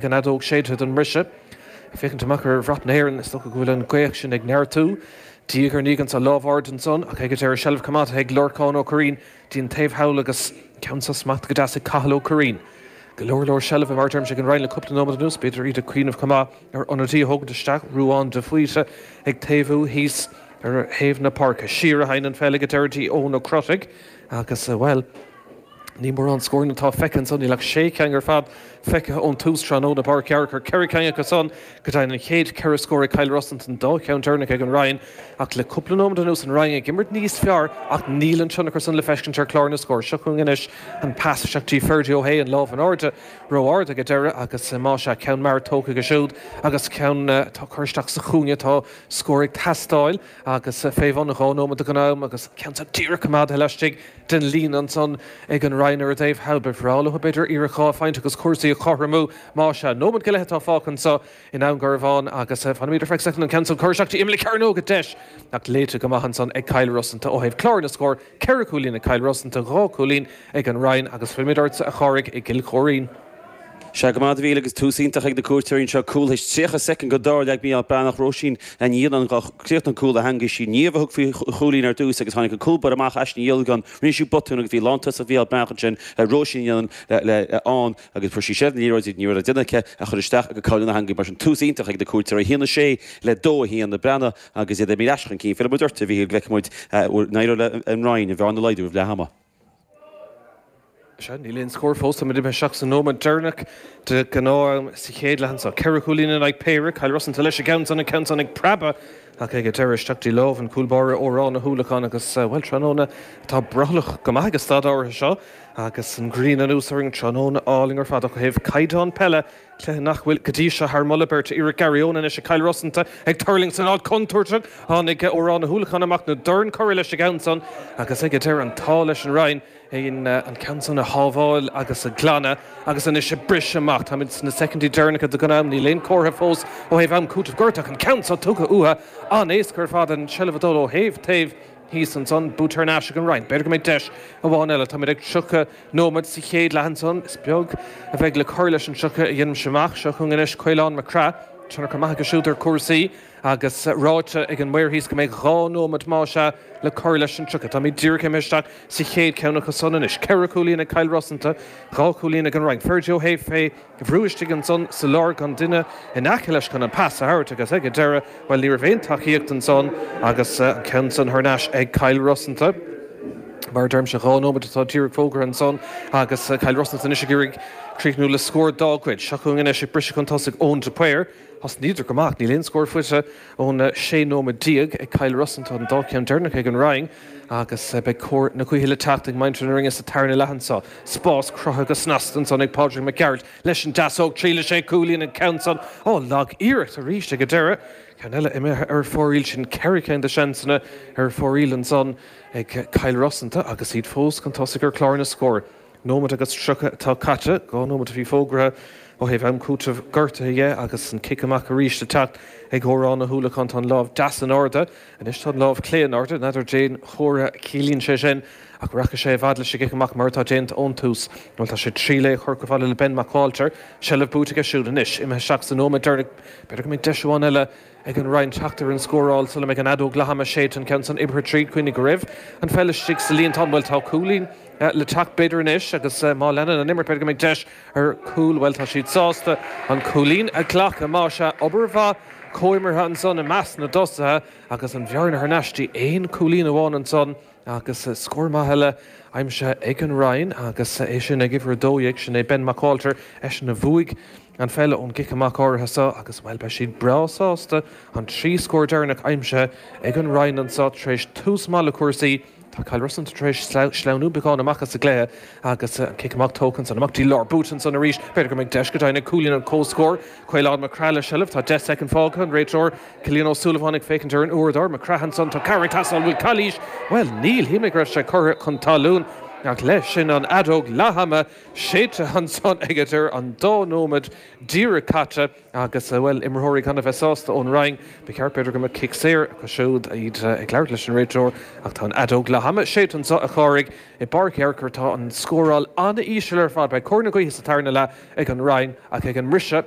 An fheadóg séidte don mbriseadh. Ag féachaint amach ar bhrat na hÉireann, is dócha go bhfuil an ghaoth sin ag neartú. Diaidh ar ndiaidh anso, lámh ard ansan, ach ag a deireadh seilbh coimeádtha ag Lorcán Ó Curraoin, dtí an taobh thall agus ceann sa smacht go deas ag Cathal Ó Curraoin. Go leor leor seilbhe mar a deirimse ag an Rinn le cúpla nóiméad anuas, b'fhéidir iad ag cuimhneamh chomh maith ar ionadaí a thógaint isteach, Ruadhán de Faoite ag taobhú thíos ar thaobh na páirce. Siar a theigheann an pheil ag a deireadh dtí Eoin Ó Crotaigh agus, bhuel, Ní mórán scóranna atá feicthe anso. Níl ach sé cheann ar fad feicthe ón tús tráthnóna i bPáirc Uí Fhearchair. Ceithre cheann acu san go deimhin. An chéad cheithre scór ag Cill Rosanta an dá cheann deireanach ag an Rinn. Ach le cúpla nóiméad anuas an Rinn ag imirt níos fearr ach níl an tionchar san le feiscint ar chlár na scór. Seo chugainn anois an pas isteach dtí Ferdia Ó hAodha. An lámh in airde ró-ard ag an deireadh agus más ea ceann mear tógtha aige siúd agus ceann atá curtha isteach sa chúinne. Tá scór ag teastáil. agus fé bhun dhá nóiméad de ghnáth-am agus ceann san díreach coimeádtha laistigh den líne ansan ag an Rinn ar an dtaobh thall. Ba bhreá leo, b'fhéidir, iarracht dhá phointe agus cúrsaí a chothromú. Más ea, nóiméad go leith atá fágtha anso i nDún Garbhán agus fanfaimid ar feadh soicind an ceann san curtha isteach dtí imeall na cearnóige. Deis ach léite go maith ansan ag Cill Rosanta ó thaobh clár na scór. Ceithre chúilín ag Cill Rosanta, dhá chúilín ag an Rinn agus fillfimid ortsa a Chárthaigh i gCill Choirín. Sea, go raibh maith agat a Mhíchíl, agus tús iontach ag na cuairteoirí anseo. Cúl théis 30 soicind go dtarr leag Mícheál Breathnach Róisín a Níon an ghuth. Chríochnaigh an cúl le heangaigh sí Niamh a thug faoi chúilín ar dtús agus tháinig an cúl báire amach aisti Niall Gunn. Rinne sí botún agus bhí lántosach Mhícheál Breathnach ansin ar Róisín a Níon le ann agus fuair sí seilbh na liathróide ní raibh le déanamh aici ach í a chur isteach i gcúl na heangaí. Mar sin tús iontach ag na cuairteoirí. Haon 6 le 2 a haon do Breathnach agus iad 1 míle ais chun cinn. Fillfidh muid ort a Mhíchíl Feicfidh muid an n-éireoidh leis an Rinn an bhearna a laghdú roimh leath ama. Sea, níl aon scór fós, táimid imithe isteach sa nóiméad deireanach de ghnáth-am sa chéad leath anseo. Ceithre chúilín in aghaidh péire, Cill Rosanta leis an gceann san, an ceann san ag preabadh ach ag an deireadh isteach dtí lámh an chúl báire Odhrán Ó hUallacháin agus, bhuel, tráthnóna atá brothallach go maith ag an staid áirithe seo agus an ghrian anuas orainn, tráthnóna álainn ar fad ach ó thaobh caighdeán peile, cluiche nach bhfuil go dtí seo thar moladh beirte, iarracht Garryowen anois ag Cill Rosanta ag tuirlingt san áit chontúirteach, tháinig Odhrán Ó hUallacháin amach an dorn curtha leis an gceann san agus ag an deireadh an t-ádh leis an Rinn an ceann san a shábháil agus a ghlanadh agus anois ag briseadh amach, táimid sna soicindí deireanacha de ghnáth-am, níl aon comhartha fós ó thaobh am cúiteamh gortach an ceann san tugtha uathu an-éasca ar fad an tseilbh ag dul ó thaobh taobh. thíos ansan, buaite ar n-ais ag an Rinn. B'fhéidir go mbeidh deis amháin eile. Táimid ag 30 nóiméad sa chéad leath ansan. Is beag a bheidh le cur leis an 30 a dhéanaimse amach. Seo chugainn anois Caolán Mac Craith. Tionchar an-mhaith aige siúd ar chúrsaí agus ráite ag an maor thíos go mbeidh dhá nóiméad más ea le cur leis an 30. Táimid díreach imithe isteach sa chéad cheann acu san anois. Ceithre chúilín ag Cill Rosanta, dhá chúilín ag an Rinn. Ferdia Ó hAodha fé. Tá brú istigh ansan sa lár gan duine in aice leis chun an pas a thabhairt agus ag an deireadh, bhuel ní raibh aon tacaíocht ansan agus an ceann san thar n-ais ag Cill Rosanta. Mar a deirimse dhá nóiméad atá díreach fógartha ansan agus Cill Rosanta anois ag iarraidh críochnú le scór dá gcuid. Seo chugainn anois ag briseadh chun tosaigh Eoin de Paor. Thosnaíodar go maith ach níl aon scór faighte ón 16 nóiméad ag Cill Rosanta, an dá cheann deireanach ag an Rinn. Agus beidh cóir na gaoithe le teacht ag muintir na Rinne sa tarna leath anso. Spás cruthaithe go snasta ansan ag Pádraig Mac Gearailt leis an deasóg. Triailfidh sé cúilín an ceann san. Ó, lag iarracht arís ag an deireadh. Ceann eile imithe ar fóraoil. Sin ceithre cinn de seansanna ar fóraoil ansan ag Cill Rosanta agus iad fós chun tosaigh ar chlár na scór. nóiméad agus tríocha atá caite, dhá nóiméad a bhí fógartha ó thaobh am cúiteamh gortuithe dhe agus an cic amach arís le teacht ag Odhrán Ó hUallacháin. Tá an lámh deas in airde anois, tá an lámh chlé in airde, n'fheadar cén comhartha a chiallaíonn sé sin ach rachaidh sé i bhfad leis an gcic amach mar atá déanta ón tús. Bhuel tá sé ag triail é a chur chomh fada le Ben Mac Ualtair, seilbh buaite aige siúd anois, imithe isteach sa nóiméad deireanach, b'fhéidir go mbeidh deis amháin eile. Ag an Rinn teacht ar an scóráil sula mbeidh an fheadóg leath-ama séidte an ceann san oibrithe tríd. Coinnigh go raibh an pheil istigh sa líon. Tá an bhuel, tá cúilín le teacht b'fhéidir anois agus má leanann an imirt b'fhéidir go mbeidh deis ar chúl. Bhuel, tá siad sásta an cúilín a ghlacadh. Más ea, obair mhaith comhimeartha ansan i measc na dtosaithe agus an bhearna thar n-ais dtí aon chúilín amháin ansan agus scór maith eile aimsithe ag an Rinn agus é sin ag uimhir a dó dhéag. Sin é Ben Mac Ualtair, eisean a bhuaigh. An pheil ón gcic amach áirithe seo agus, bhuel, beidh siad breá sásta an trí scór deireanach aimsithe ag an Rinn anso tar éis tús maith le cúrsaí. Tá Cill Rosanta tar éis sleamhnú beagán amach as an gcluiche agus an cic amach tógtha ansan amach dtí lár, buaite ansan arís. B'fhéidir go mbeidh deis go deimhin ar chúilín an chomhscóir. Caolán Mac Craith le seilbh, tá deich soicind fágtha, an réiteoir Cillian Ó Súilleabháin ag féachaint ar an uaireadóir. Mac Craith ansan, tá ceathrar ar a shál, an bhfuil calaois? Bhuel, níl, shíl mé go raibh sé curtha chun talún ach leis sin an fheadóg leathama. Séidte ansan aige, tá an dá nóiméad díreach caite agus bhuel imreoirí gan a bheith sásta ón Rinn. Ba cheart b'fhéidir go mbeadh cic saor acu siúd. Iad ag labhairt leis an réiteoir ach tá an fheadóg leath ama séidte anso a Chárthaigh. I bPáirc Uí Fhearchair tá an scóráil an-íseal ar fad. Beidh cóir na gaoithe sa tarna leath ag an Rinn ach ag an mbriseadh.